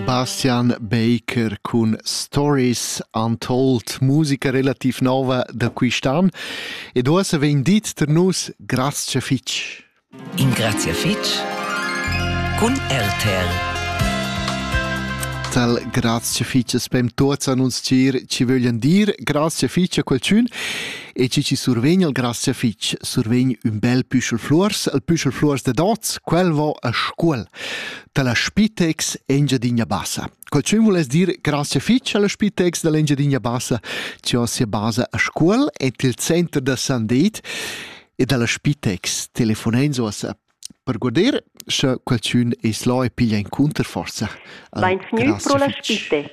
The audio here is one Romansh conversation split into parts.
Bastian Baker cun Stories Untold, musica relativ nova da quist'an ed uossa vegn dit tar nus grazcha fich. In grazia fich cun RTL. Tal grazie fice spem tuots an uns cir ci vöglian dir grazie fice a qualchün e ci ci survegn al grazie fice survegn ün bel püschel flurs, al püschel flurs de dots, quel vo a Scuol. dalla Spitex Engiadina Bassa. Quel tschun vuless dir grazie fitg alla Spitex dall'Engiadina Bassa, che ha sia basa a Scuol et il center da Sandit e dalla Spitex telefonens uossa per guder sche qualcun es là e piglia incunter forza. Vain fgnü pro la Spitex.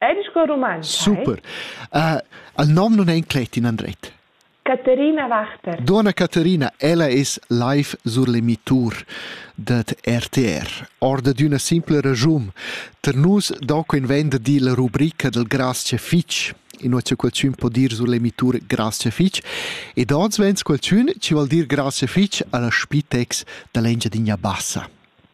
È sco rumantsch? Super. Uh, il nom non è inclet in andret. Caterina Wachter. Dona Caterina, ella es live sur l'emitur dad RTR. Orda d'üna simpla ragiun. Per nus donco invenda di la rubrica del Grazie Fitch in oce qualcun po dir sur l'emitur Grazie Fitch ed oz vens qualcun ci vuol dir Grazie Fitch alla Spitex da l'Engiadinha Bassa.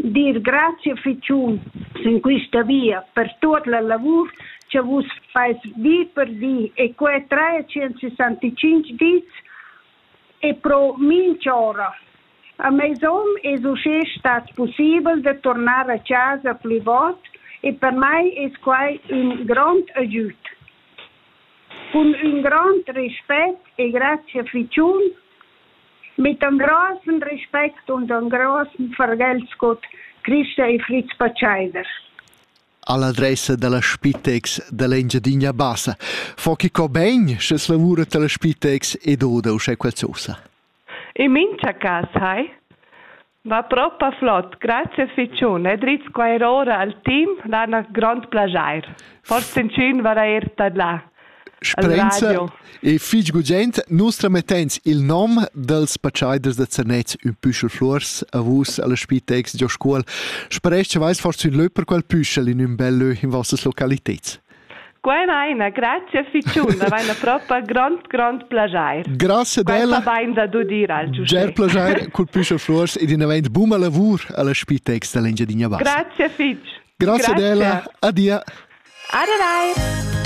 Dir grazia fetschun sin quista via per tuot la lavur cha vus fais di per di e que 365 dis e pro minch'ora. A meis hom es uschè stat pussibel da turnar a chasa plü vout e per mai es quai ün grond agüd. Cun ün grand respet e grazia fetschun Mittan grossen respect und an grossen fargel sco Christa e Fritz Pacheider. All'adressa dalla Spitex dall'Engiadina Bassa fa chi co bein sch'es lavura dalla Spitex ed oda uschè qualzosa. In mincha cas hai? Va propa flot, grazie fitschun e drizz quai er ora al team, lana grond plaschair. Forse inchün varà eir tadlà. Sperenza e fich gugent, nus tramettens il nom dels paciaiders da Zernez ün püschel flors a vus alla Spitex Gio Scuol. Speresc che vais forse ün lö per quel püschel in ün bel lö in vossas localiteds. Quai va ina grazia fitschun, da vaina propa grond, grond plaschair. Grazie della. bain da dudir al giuschè. Ger plaschair cul püschel Fluors ed inavant buma lavur alla spitex da l'Engiadina Bassa. Grazie fitsch. Grazie, Grazie. della. Adia. Aderai.